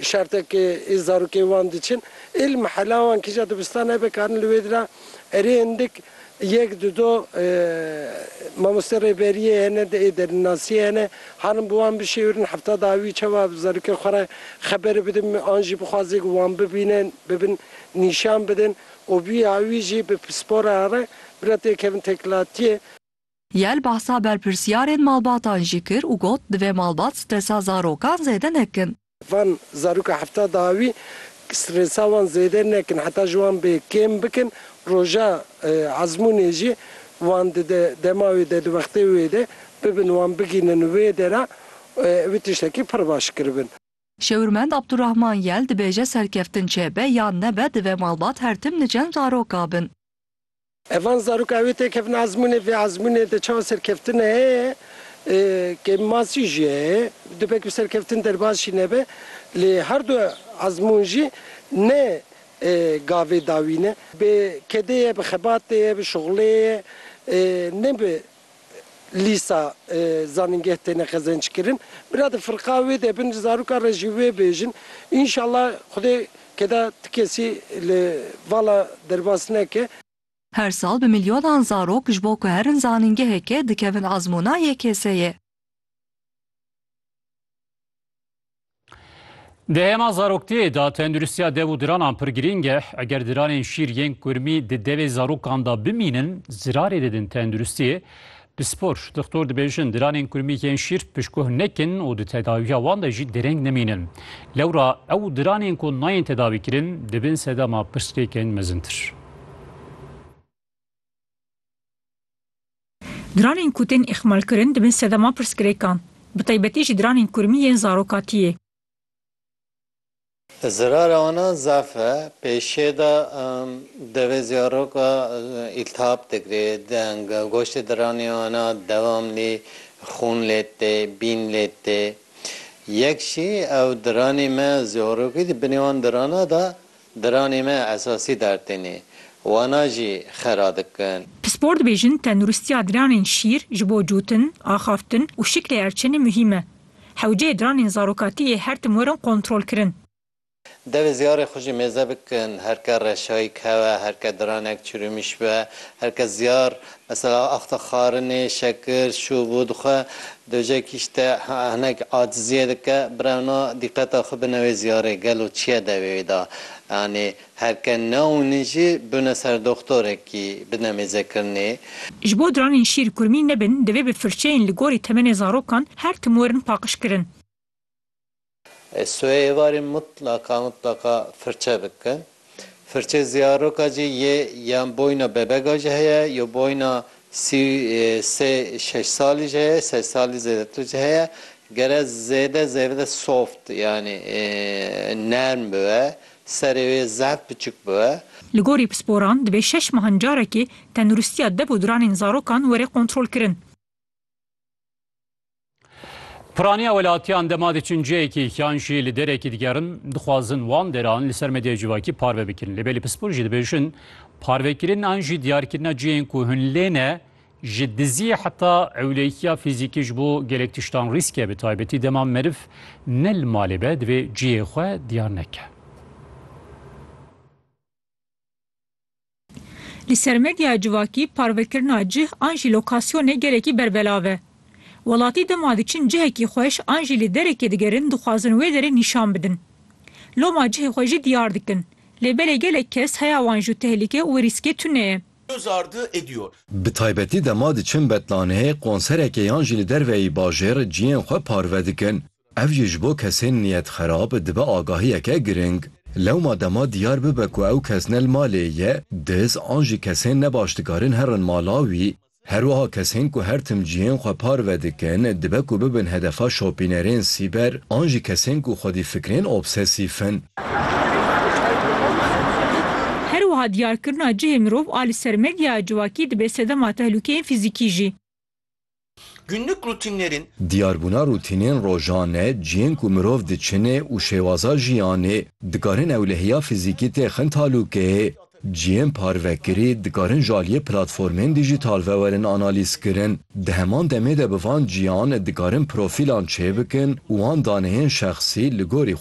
Şertek ke ê zarokê wan diçin êl mehela wan kîja dibistan hebe karin li wê dira erê hindik yek du do mamoste rêberiyê hene di ê derinasiyê hene harin bi wan bişêwirin hefta da wî çawa zarokê xwe re xeberi bidin an jî bixwazê ku wan bibînin bibin nîşan bidin û bî ya wî jî bi pispora re bira têkevin têkilatiyê. Yel behsa berpirsyarên malbatan jî kir û got, divê malbat stresa zarokan zêde nekin. Van zaroka hefta daha wî stresa wan zêde nekin heta ji wan bê kêm bikin, roja ezmûnê jî wan dide dema wê de di wextê wê de bibin wan bigihînin wê dera wê tiştekî pir baş kiribin. Şêwirmend Abdurahman Yel dibêje serkeftin çêbe yan nebe divê malbat her tim li cem zaroka bin. Evan zarok ew ê têkevin ezmûnê, vê ezmûnê de çawa serkeftin heye, kêm masî jî heye, dibe ku serkeftin derbas jî nebe, lê her du ezmûn jî ne gavê dawî ne, bi kedê ye, bi xebatê ye, bi şixulê ye, ne bi lîsa zanîngeh têne qezenckirin. Bira di firqa wê de bin, zarokan re jî wê bêjin. Înşallah Xwedê keda ti kesî li vala derbas neke. Her sal bi milyonan zarok ji bo ku herin zanîngeheke dikevin ezmûna YKS'ê. Di hêma zaroktiyê de tenduristiya dev û diranan pir girîng e. Eger diranên şîr yên kurmî di devê zarokan de bimînin, zirarê didin tenduristiyê. Bi spor, doktor dibêjin diranên kurmî yên şîr pişkoh nekin û di tedawiya wan de jî dereng nemînin. Lewra ew diranên ku nayên tedawîkirin dibin sedema pirsgirêkên mezintir. Dranên ku tên îxmalkirin dibin sedema pirsgirêkan, bi taybetî jî dranên kurmî yên zarokatiyê. Zirara wanan zaf e. Pêşê de devê zaroka îltihab digre, goştê diranê wana dewamlî xûn lê tê, bîn lê tê. Yek jî ew diranê me zarokî di binê wan dirana de Diranê me esasî dar têne. Wana jî xera dikin. Pispor dibêjin tendurustiya diranên şîr ji bo cûtin, axaftin û şiklê erçenê muhîm e. Hewceyê diranên zarokatî yê her tim werin kontrolkirin. Devê ziyarê xwe jî mêze bikin. Her ke reşayîk hewe, her ke diranek çirûmîş be, her ke ziyar Mesela axta xarinê, şekir, şûv û dixwe, dojek îşte hinek aciziyê dike, birewna dîqeta xwe bine wê ziyarê, gelo çiye dewê wê da? Yanî her ke neûnin jî biûne ser doxtorekî bine mêzekirinê. Ji bo diranên şîr kurmî nebin, divê bi firçeyên li gorî temenê zarokan her tim werin paqijkirin. Ez soya êvarê mutlaka mutlaka firçe bikin. Firçeyê ziyaroka jî yê yan boyna bebega jî heye yo boyna sî û sê şeş salî jî heye sed salî zêdetir jî heye gere zêde zêde soft yanî nerm bibe serê wê zehf biçûk bibe. Li gorî pisporan divê şeş mehan carekê tendirustiya dev û diranên zarokan were kontrolkirin. Piraniya welatiyan dema diçin cihekî yan jî li derekî digerin dixwazin wan deran li ser medyaya civakî parve bikin. Lê belê pispor jî dibêjin parvekirin an jî diyarkirina cihên ku hûn lê ne ji diziyê heta ewlekiya fîzîkî ji bo gelek tiştan rîsk e bi taybetî dema meriv ne li malê be divê cihê xwe diyar neke. Li ser medyaya civakî parvekirina cih an jî lokasyonê gelekî berbelav e. Welatî dema diçin cihekî xweş an jî li derekê digerin dixwazin wê derê nîşan bidin. Loma cihê xwe jî diyar dikin. Lê belê gelek kes heya wan ji tehlike û rîskê tune ye. Göz ardı ediyor. Bi taybetî dema diçin betlaneyê, konserekê yan jî li derveyî bajêr cihên xwe parve dikin. Ev jî ji bo kesên niyetxerab dibe agahiyeke giring. Lewma dema diyar bibe ku ew kes ne li malê ye, diz an jî kesên nebaş dikarin herin mala wî. Herwiha kesên ku her tim cihên xwe parve dikin dibe ku bibin hedefa şopînerên sîber an jî kesên ku xwedîfikrên obsesîf in. Herwiha diyarkirina cihê mirov a li ser medyaya civakî dibe sedema tehlûkeyên fîzîkî jî. Günlük rutinlerin. Diyarbûna rutînên rojan e, cihên ku mirov diçinê û şêwaza jiyanê, dikarin ewlehiya fizîkî tê xin talûkeyê. Cihên parvekirî dikarin ji aliyê platformên dîjîtal ve werin analîzkirin. Di heman demê de bi van cihan dikarin profîlan çêbikin û wan daneyên şexsî li gorî